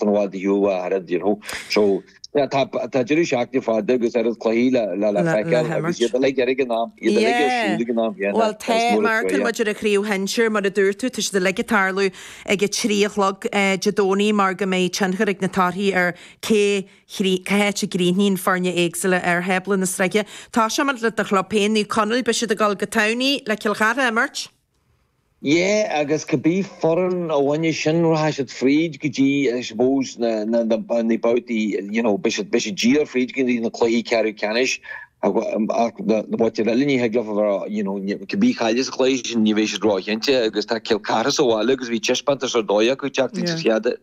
san abhaile thú a thairfead you know so tá tá tá deireadh seachtaine fada agus oiread cluichí le le le feiceáil le agus iad á n-imirt. uilig ar ag an am iad uilig ar siúl ag an am yeah yeah bhuel tá tá má amharcann muid ar an chraobh shinsir mar a dúirt tú tá siad uilig ag tarlú ag a trí a chlog Dé Domhnaigh mar go mbeidh tionchar ag na torthaí ar cé chrí cé háit a gcríochnaíonn foirne éagsúla ar thábla na sraithe. Toiseoidh muid le do chlub féin Naomh Conaill beidh siad ag dul go Tamhnaigh le Cill Chartha a imirt. Ie, agus cibé foireann a bhainfidh sin rachaidh siad fríd go dtí I suppose na, na, na babhtaí you know beidh siad, beidh siad díreach fríd go dtí na cluichí ceathrú ceannais ach, ach na, na babhtaí eile ní thig leofa bheith you know cibé a chaillfidh sa chluiche sin ní bheidh siad ró-chinnte agus tá Cill Chartha sa bhaile agus bhí taispeántas ar dóigh acu teacht ins an chéad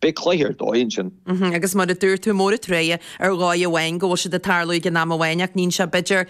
Beidh cluiche ar dóigh ansin. Agus mar a dúirt tú, mór an trua ar dhóigh amháin go bhfuil siad ag tarlú ag an am amháin ach níonn sé b'fhéidir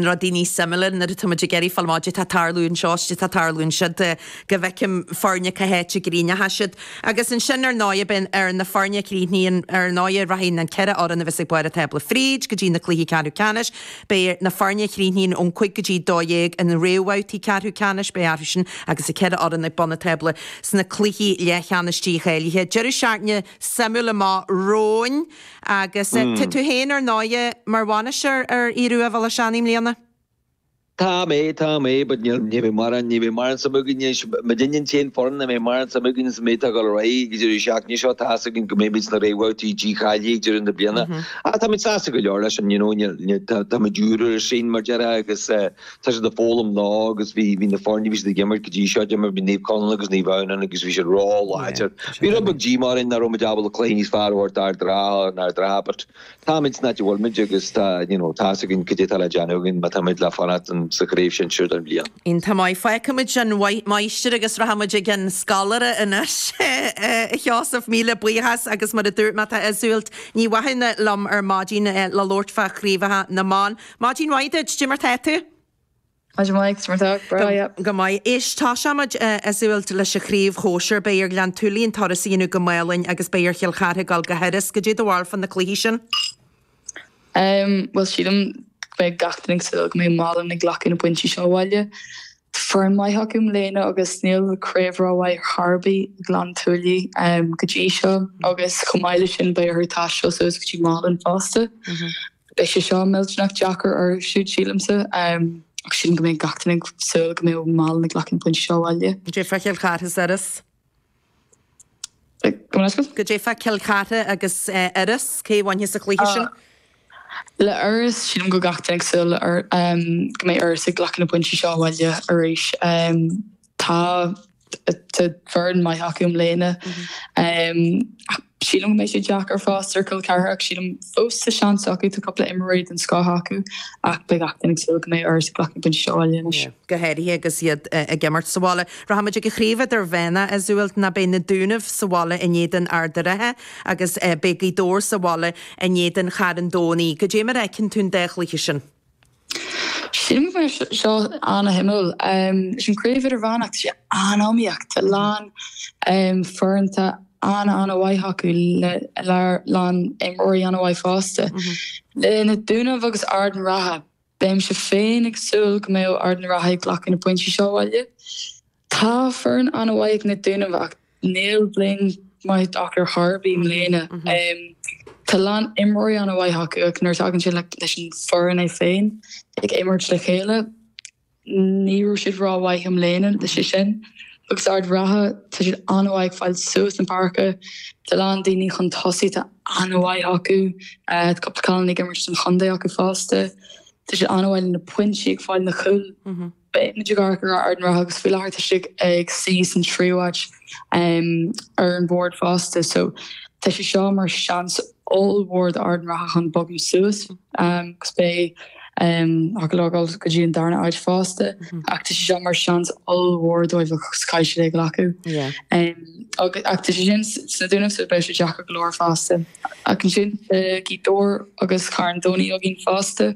rudaí níos suimiúla nuair atá muid ag iarraidh fáil amach, 'dé tá ag tarlú anseo, 'dé tá ag tarlú ansiúd, go bhfeicfidh foirne cá háit a gcríochnóidh siad. Agus ansin ar ndóigh beidh ar na foirne a chríochnaíonn, ar ndóigh rachaidh na ceithre fhoireann a bheas ag barr an tábla fríd go dtí na cluichí ceathrú ceannais, Beidh ar na foirne a chríochnaíonn ón 5 go dtí 12 imirt sna réamhbhabhtaí ceathrú ceannais, beidh acusan agus na ceithre fhoireann ag bun an tábla sna cluichí leathcheannais dícháilithe. Deireadh seachtaine suimiúil amach romhainn agus tá tú féin ar ndóigh mar bhainisteoir ar fhir rua Bhaile na nDúnaibh i mbliana. Tá mé, tá mé but ní bheidh mórán, ní bheidh mórán suim againn anois, muidinne an t-aon foireann nach mbeidh mórán suim againn sa méid atá ag dul ar aghaidh ag an deireadh seachtaine seo, tá 'fhios againn go mbeimid sna réamhbhabhtaí dícháilithe ag deireadh na bliana. Ah, táimid sásta go leor leis an, you know, táimid úr ar an scene, mar a deir, agus tá siad ag foghlaim leo agus bhí, bhí na foirne, bhí siad ag imirt go dtí seo, d'imir, bhí Naomh Conaill agus Naomh Adhamhnáin ann agus bhí siad ró-láidir. Bhí rud beag díomá orainn nach raibh muid ábalta cluiche níos fearr a thabhairt d'Ard an Rátha, in Ard an Rátha, but táimid san áit a bhfuil muid agus tá, you know, tá 's againn cad é atá le déanamh againn má táimid le fanacht sa Chraobh Shinsir don bhliain. Iontach maith, fágfaimid an máistir agus rachaimid chuig an scoláire anois. A Sheosaimh, míle buíochas agus mar a dúirt mé, tá súil Ní Mhathúna liom ar maidin le labhairt fá chraobhacha na mban. Maidin mhaith duit, goidé mar tá tú? Maidin mhaith, cé mar tá tú? Breá, yep. Go maith. Éist, toiseoimid is dóiche leis an chraobh shóisir. Beidh ar Ghleann tSúilí an turas a dhéanamh go Málainn agus beidh ar Chill Chartha goil go hIorras. Goidé do bharúil fá na cluichí sin? Em, bhuel, sílim go mbeidh gach duine ag súil go mbeidh Málainn ag glacadh na bpointí seo abhaile. foireann mhaith acu i mbliana agus níl craobh rómhaith ar bith ag Gleann tSúilí go dtí seo agus chomh maith leis sin beidh orthu taisteal suas go dtí Málainn fosta. Beidh sé siúd millteanach deacair orthu siúd sílimse ach sílim go mbeidh gach duine ag súil go mbeidh Málainn ag glacadh an pointe seo abhaile. Goidé fá Chill Chartha agus Iorras, cé a bhainfeas an cluiche sin? Le Iorras, sílim go mbeidh gach duine ag súil go mbeidh Iorras ag glacadh na bpointí seo abhaile arís. Tá foireann mhaith acu i mbliana ach Sílim go mbeidh sé deacair fosta ar Chill Chartha ach sílim fós tá seans acu, tá cúpla imreoirí den scoth acu ach beidh gach duine ag súil go mbeidh Iorras ag glacadh pointí seo abhaile anois. go háirithe agus iad ag imirt sa bhaile. Rachaimid ag an chraobh idirmheánach a súl ná beidh na Dúnaibh sa bhaile in éadan Ard an Rátha agus beidh Gaoth Dobhair sa bhaile in éadan Charn Domhnaigh. Cad é mar a fheiceann tú an dá chluiche sin? Sílim go raibh seo an-shuimiúil. Leis an craobh idirmheánach, tá sé an-iomaíoch. Tá a lán foireanta an-an-mhaith acu le a lán imreoirí an-mhaith fosta. Leis na Dúnaibh agus Ard an Rátha, bheinnse féin ag súil go mbeadh Ard an Rátha ag glacadh na bpointí seo abhaile. Tá foireann an-mhaith ag na Dúnaibh ach níl bliain maith acu ar chor ar bith i mbliana. Tá a lán imreoirí an-mhaith acu ach nuair a thagann sé leis an foireann é féin ag imirt le chéile, ní raibh siad ró-mhaith i mbliana, leis sin agus Ard an Rátha, tá siad an-mhaith ag fáil suas na páirce, tá a lán daoine chun tosaigh atá an-mhaith acu, tá cúpla cailín ag imirt don chontae acu fosta. Tá siad an-mhaith le na pointí ag fáil na gcúl. Beidh muid ag amharc ar Ard an Rátha agus faoi láthair tá siad ag suí san tríú áit ar an bhord fosta so tá sé seo mar seans ollmhór do Ard an Rátha chun bogadh suas agus beidh siad ábalta dul go dtí an darna áit fosta ach tá sé seo mar seans ollmhór dóibh agus caithfidh siad é a ghlacadh ach tá sé sin sna Dúnaibh so beidh sé deacair go leor fosta. Ach ansin tá Gaoth Dobhair agus Carn Domhnach againn fosta.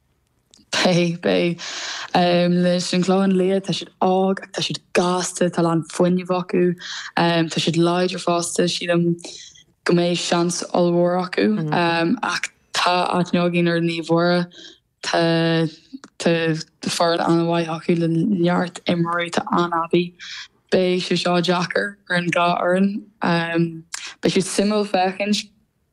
Beidh, beidh. Leis an Clochán Liath, tá siad óg ach tá siad gasta, tá a lán fuinnimh acu, tá siad láidir fosta, sílim go mbeidh seans ollmhór acu. Ach tá aithne againn ar Naomh Muire, tá foireann an-mhaith acu le neart imreoirí atá an-aibí. Beidh sé seo deacair ar an dhá fhoireann. Beidh sé suimiúil féachaint.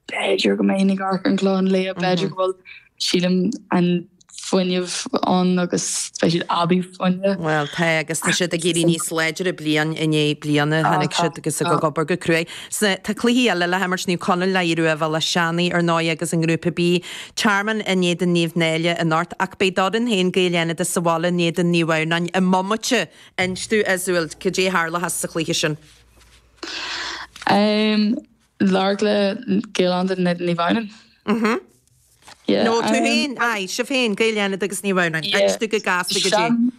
B'fhéidir go mbeinn ag amharc ar an Clochán Liath, b'fhéidir go bhfuil, sílim, an fuinneamh ann agus beidh siad aibí fuinne. Bhuel, tá, agus tá siad ag éirí níos láidre bliain i ndiaidh bliana, tháinig siad agus ag obair go cruaidh. Tá cluichí eile le himirt, Naomh Conaill le hAodh Ruadh Bhéal Átha Seanaidh, ar ndóigh, agus i nGrúpa B, Tearmann in éadan Naomh Náille anocht, ach beidh d'fhoireann féin Gaeil Fhánada sa bhaile in éadan Naomh Adhamhnáin i mbomaite inis dúinn, Azul. Cad é a tharlóchas sa chluiche sin? Lorgla Gaeil Fhánada in éadan Naomh Adhamhnáin. Nó tú féin, aye, sibh féin, Gaeil Fhánada agus Naomh Adhamhnáin, aiste go gasta go dtí.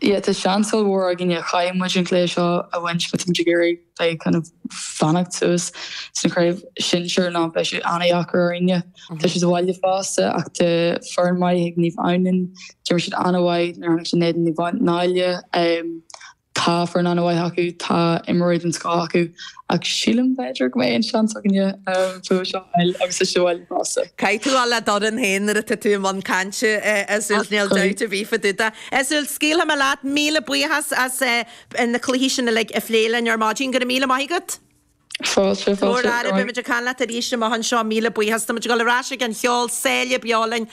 Yeah, tá seans ollmhór againne, caithfidh muid an cluiche seo a bhaint, má tá muid ag iarraidh bheith kind of fanacht suas sa chraobh sinsear ná beidh sé ana-dheacair orainne. Tá sé sa bhaile fosta ach tá foireann maith ag Naomh Adhamhnáin, d'imir siad ana-mhaith nuair a tháinig siad in éadan Naomh Náille. Tá foireann an-mhaith acu, tá imreoirí den scoth acu ach sílim b'fhéidir go mbeidh an-seans againne fuath seo a fháil agus a Shúil fosta. Caithfidh tú a bheith le do dhream féin nuair atá tú i mbun cainte, a Sult, níl dabht ar bith fá dtaobh de. A Sult, scaoilfidh mé leat, míle buíochas as na cluichí sin uilig a phlé linn ar maidin, go raibh míle maith agat. Fáilte, fáilte. Go raibh maith agat. Go raibh maith agat. Beimid ag caint leat arís amach anseo, míle buíochas. Táimid ag dul ar ais chuig an cheol, Saoire beo linn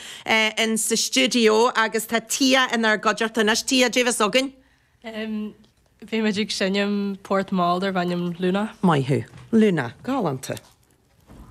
in sa stiúideo agus tá Tia inár gcuideachta anois. Tia, Dé do bheatha chugainn. Beimid ag seinm port mall darb ainm Luna. Maith thú. Luna. Galánta.